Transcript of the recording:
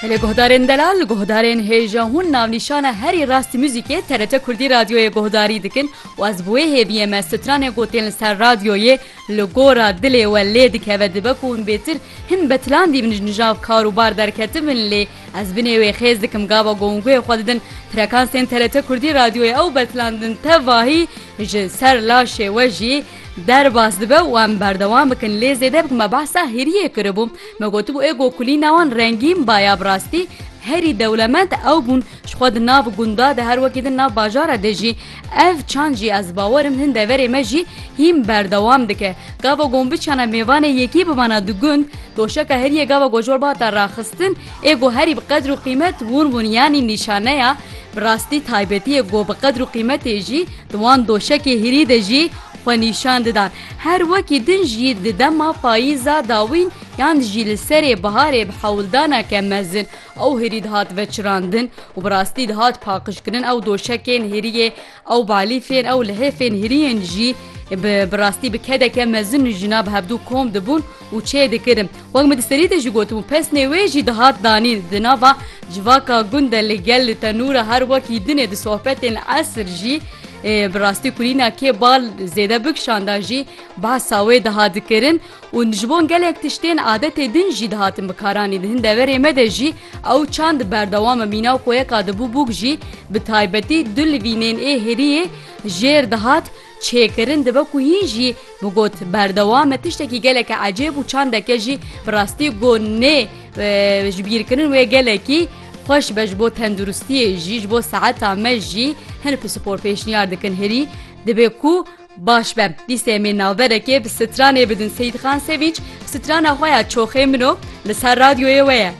Lê guhdarên delal, guhdarên hêja hûn navnîşana herî rastî muzîkê TRT Kurdî Radyoyê guhdarî dikin û ez bi wê hêviyê me stranê ku tên li ser radyoyê li gora dilê we lê dikeve dibe ku hûn bêtir hin betilan dîbin ji nijav kar û bar derketibin lê ez binê wê xêz dikim gava gonguyê xwe didin frekansên TRT Kurdî Radyoyê ew betilan didin tevahî ji ser laşê we jî Derbas dibe û em berdewam bikin lê zêde bi me behsa hêriyê kiribû. Me gotibû ê ku kulîna wan rengîn ba ya bi rastî herî dewlemend ew bûn ji xwe di nav gunda de her wekî din nav bajara de jî. Ev çand jî ez bawer im hin deverê me jî hîn berdewam dike. Gava gombiçana mêvanê yekî bimana di gund doşeka heriyê gava gojol bihata raxistin ê ku herî bi qedr û qîmet wan bûn yanî nîşaneya bi rastî taybetiyê ku bi qedr û qîmetê jî Di wan doşekê hirî de jî xwe nîşan didan. Her wekî din jî di dema payîza dawîn yan jî li serê biharê bi hewldaneke mezin ew hirî dihat veçirandin û bi rastî dihat paqijkirin. Ew doşekên hiriyê, ew balîfên, ew lihêfên hiriyên jî bi rastî bi kedeke mezin jina bi hevdû kom dibûn. û çê dikirin. Wek min di serî de jî gotibû pesnê wê jî dihat danîn. Di nava civaka gund de li gel li tenûr e her wekî dinê di sohbetên esr jî bi rastî kulîna kê bal zêde bikişanda jî behsa wê dihat dikirin û ji bo gelek tiştên adetê din jî dihatin bikaranîn. Di hin deverê me de jî ew çand berdewam e mîna koyeka dibû bûk jî bi taybetî du livînên ê heriyê jêr dihat Çêkirin dibe ku hîn jî bi got berdewam e tiştekî geleke ecêb û çandeke jî bi rastî ku nê ji bîr kirin wê gelekî xweş be ji bo tenduristiyê jî ji bo seheta me jî hin pispor pêşniyar dikin hirî dibê ku baş be dîsê em ê navberekê bi stranê bidin Seyîdxan Sevinç strana xwe ya Çoxê min o li ser radyoyê we ye.